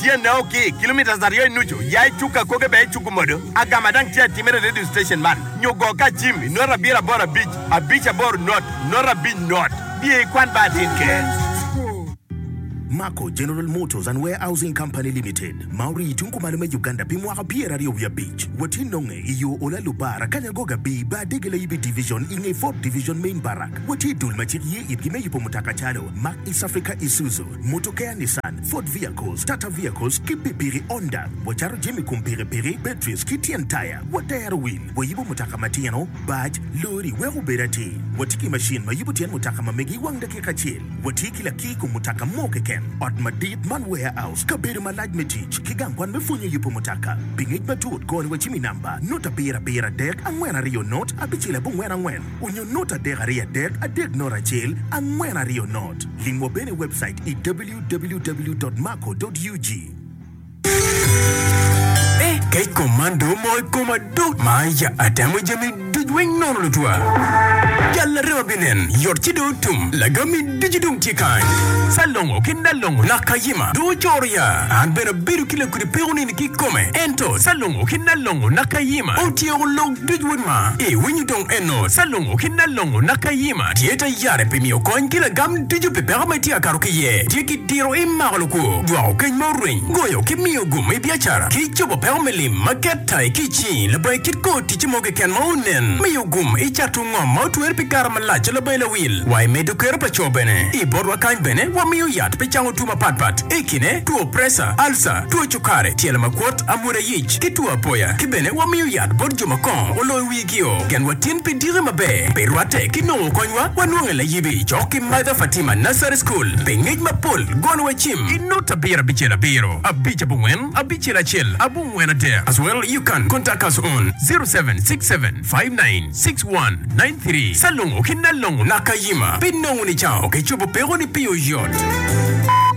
tyene o ki kilometres aryo i nucu ya i cuk akoge bene icuku modo agama dang tye atimere i radio station man nyo go ka cim i nota abiro aboro abic abic aboro not not abic not diyo i kwan ba atin keken. Mako General Motors and Warehousing Company Limited ma orii i tung kumalo me Uganda pi mwaka pyer aryo wiye abic watye nonge i yo Ola Lubar Akanya Goga Bii ba Adege Layibi Division i nge Ford Division Main Barrack watye i dul ma cik ye itgi me yubo mutoka calo Mack East Africa Isuzu Mutokeya Nissan, Ford Vehicles, Tata Vehicles ki pikpiki Honda. Wacato jami kom pikipiki, batteries ki tyen taya. Watero wil, wayubo mutoka matino, bac, lori wek obed atir. Watye ki macin ma yubo tyen mutoka ma megi i wang dakika acel. Watye ki laki i kom mutoka mo keken. Ot madit man warehouse, kabedo malac me tic, ki gang kwan me pwonyo yubo mutoka. Pi ngec matut, kor ni wacim i namba, nut abiro abiro adek, angwen aryo nut, abicel abongwen angwen. Onyo not adek aryo adek adek not acel angwen aryo not. Lim wa bene i webcait i www.maco.ug. Ni kec kom man dong omoko i koma duk ma ya atemo jami duc weng nono lutwa jal arem abinen yot ci dong otum lagam mi ducu dong tye kany salongo ki nalongo lak kayima dong ocoro ya an bene abedo ki lakudi peko nini ki kome ento salongo ki nalongo lak kayima otyeko log Duc wod ma i winyo dong eno Calungo ki Nalongo naka Yima tye ta yare pi miyo kony ki lagam ducu pi peko ma itye ka kato ki iye. Tye ki diro i mako lukwo, jwako keny ma orweny, goyo ki miyo gum i biacara, ki cobo peko me lim ma ket ta i kic-ci. Labongi kit kor ticce mo keken ma onen, miyo gum i cato ngom ma otwer pi kare malac. Labongi lawil wa i medo kero pa co bene. I botwa kany bene wamiyo yat pi cango two mapat pat i kine two preca, alca, two cukare, tyelo makwot, amwoda, kuc ki two apoya, ki bene wamiyo yat bot jo ma kongo oloyo wigio. Genwa tin pi diki maber pe rwatte ki nongo konywa wanonge layibi cok ki Mother Fatima Nursery School pi ngec mapol golo wa cim. I nut abiro abicel abiro abic abongwen abicel acel abongwen adek as well you can contact us on zero seven six seven five nine six one nine three Salongo ki Nalongo Nakayima pi nongo ni cao ki cobo peko ni pi oyot.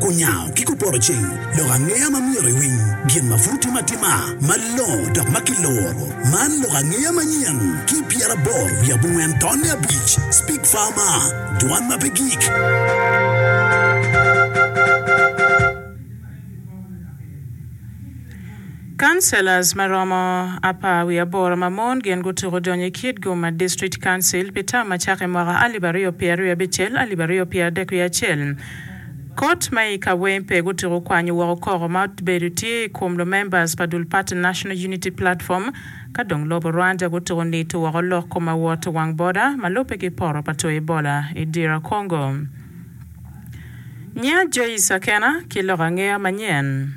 Kunyango ki kupoto ceng, lok angeya ma myero iwiny, gin ma pud tye matima, malongo dok ma kiluro. Man lok angeya manyen ki i pyeraboro wiye abongwen tonne abic, Speak Farmer, Dwan ma pe gik. Councillors ma romo apar wiye aboro ma mon gin gutuko donyo i Kitgum District Council pi tam ma cako i mwaka alip aryo pyeraryo abicel, alip aryo pyeradek wiye acel. Kot ma i Kawempe gutyeko kwanyo woko koko ma obedo tye i kom lumembers pa dul pati National Unity Platform ka dong lobo Rwanda gutyeko nito woko lok kom awot wang boda ma lubbe ki poto pa two Ebola i Dira Kongo. Nyinga Joyce Akena ki lok angeya manyen.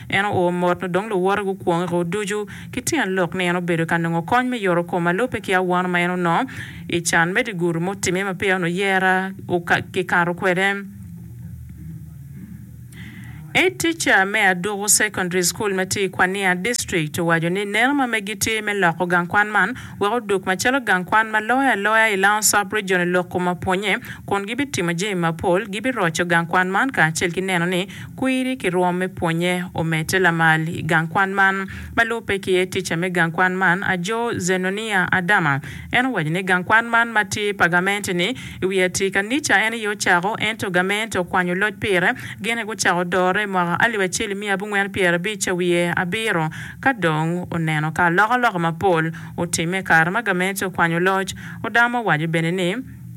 En oo mot nyo dong luwote gukwongo iko ducu ki tyen lok ni en obedo ka nongo kony me yoto kom ma lubbe ki awano ma en onongo i can me digudu ma otimme ma peya onongo yera kikato kwede. Head teacher me Aduku Secondary School ma tye i Kwania District owaco ni neno ma megi tye me loko gang kwan man wek odug macalo gang kwan ma loyo aloya i Lowndes Sub-Region i lok kom ma pwonye kun gibitimo jami mapol, gibiroco gang kwan man kacel ki neno ni Kwiri ki rwom me pwonye omedde lamal i gang kwan man. Ma lubbe ki iye, tica me gang kwan man ajo Zenonia Adama, en owaco ni gang kwan man ma tye pa gamente-ni i wi atir kanica en aye ocako ento gamente okwanyo loc pire. Gin aye gucako dore i mwaka alip acel i miya abongwen pyerabic ca wiye abiro ka dong oneno ka alokaloka mapol otimme i kare ma gamente okwanyo loc. Odama owaco bene ni,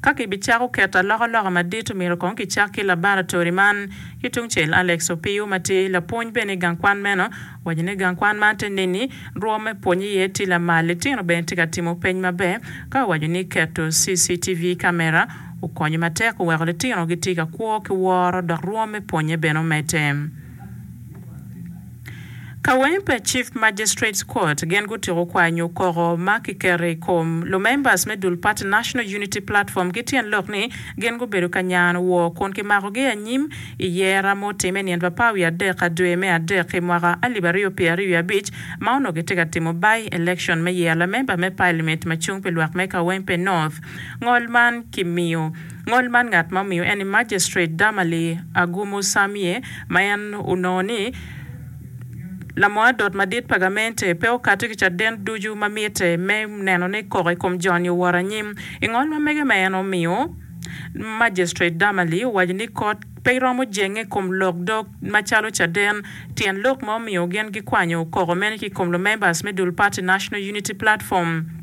Ka kibicako keto alokaloka madit, omyero kong kicak ki labaratori man. Ki tungcel, Alex Opiyo ma tye lapwony bene i gang kwan meno, owaco ni gang kwan man te neni rwom me pwonye iye tye lamal, litino bene tye ka timo peny maber, ka owaco ni keto CCTV kamera okonyo matek oweko litino gitye ka kwo ki woro dok rwom me pwonye bene omedde. Kawempe Chief Magistrates Court gin gutyeko kwanyo koko ma kiketo i kom lumembers me dul pati National Unity Platform ki tyen lok ni gin gubedo ka nyano wor kun kimakogi anyim i yera ma otime nyen Papaa wiye adek ka dwe me adek i mwaka alip aryo pyera aryo wiye abic ma onongo kitye ka timo by election me yero lamemba me Parliament ma cung pi lwak me Kawempe North. Ngol man kimiyo. Ngol man ngat ma omiyo en ni Magistrate Damali Agumu Samie ma en onongo ni Lamoadot madit pa gamente pe okato ki caden ducu ma mitte me neno ni koko i kom joni owoto anyim. I ngol ma mege ma en omiyo, Magistrate Damali owaco ni kot pe romo jenge i kom lok dog macalo caden tyen lok ma omiyo gin gikwanyo koko mene ki i kom lumembers me dul pati National Unity Platform.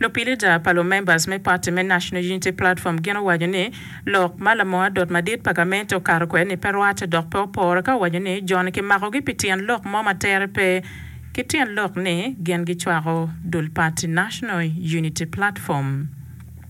Lupilida pa lumembers me party me National Unity Platform gin owaco ni lok ma lamoo adot madit pa gamente okato kwede ni pe rwate dok pe opore ka owaco ni jo-ni kimakogi pi tyen lok mo ma tere pe ki tyen lok ni gin gicwako dul party National Unity Platform.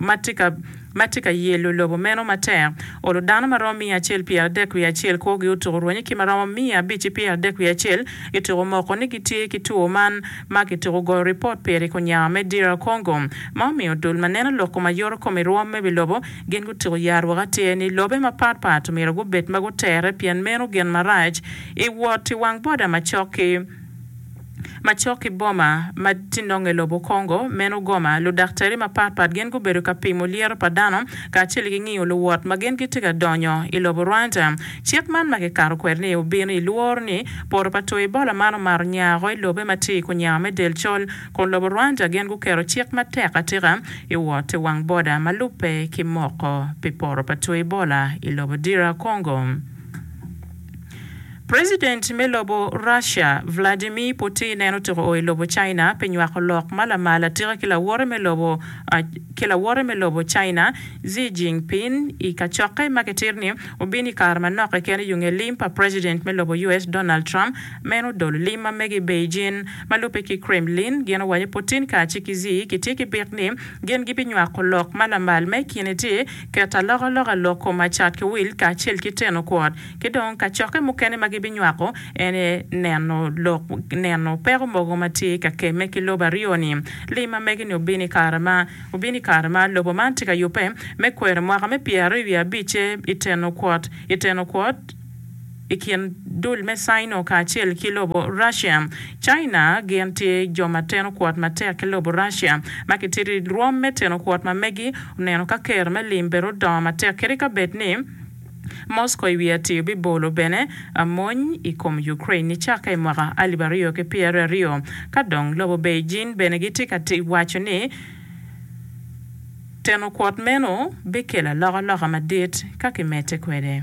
ma tye ka yelo lobo meno matek, olo dano ma romo miya acel pyeradek wiye acel kwogi, otuko rwenye ki ma romo miya abic-ci pyeradek wiye acel kituko moko ni gitye ki two man ma kituko goyo ripot pire i kunya me DR Congo, ma omiyo dul ma neno lok kom ayoto kom i rwom me wi lobo gin gutuko ya rwok atir ni lobe mapat pat omyero gubed ma gutere pien meno gin marac i wot i wang boda macok ki Macok ki boma ma tye nonge lobo Congo meno Goma, ludaktari mapat pat gin gubedo ka pimo lyeto pa dano kacel ki ngiyo luwot ma gin gitye ka donyo i lobo Rwanda. Cik man ma kikato kwede ni obino i lworo ni poto pa two Ebola man omato nya woko i lobe ma tye i kunyawa me del col, kun lobo Rwanda gin guketo cik matek atika i wot i wang boda ma lubbe ki moko pi poto pa two Ebola i lobo DR Congo. President me lobo Russia, Vladimir Putin en otuko oo i lobo China pi nywako lok ma lamal atika ki lawote me lobo ki lawote me lobo China, Xi Jinping i kacokke ma kitito ni obino i kare manok keken i yunge lim pa President me lobo US, Donald Trump meno odolo lim ma mege i Beijing. Ma lubbe ki Kremlin gin owaco Putin kacel ki Xi kitye ki bit ni gin gibinywako lok ma lamal ma i kine tye Ket alokaloka lok kom acat ki wil kacel ki teno kwot, ki dong kacokke mukene ma gibinywako en aye neno lok neno peko mogo ma tye ka kemme ki lobo aryo-ni. Lim ma megi-ni obino i kare ma obino i kare ma lobo man tye ka yubbe me kwero mwaka me pyeraryo wiye abicce i teno kwot i teno kwot. i kin dul me Sino kacel ki lobo Russia. China gin tye jo ma teno kwot matek ki lobo Russia ma kitito i rwom me teno kwot ma megi oneno ka ker me lim bene odongo matek kadi ka bed ni Moscow i wi atir bibolo bene mony i kom Ukraine nicakke i mwaka alip aryo ki pyera aryo ka dong lobo Beijing bene gitye ka waco ni teno kwot meno bikelo alokaloka madit ka kimedde kwede.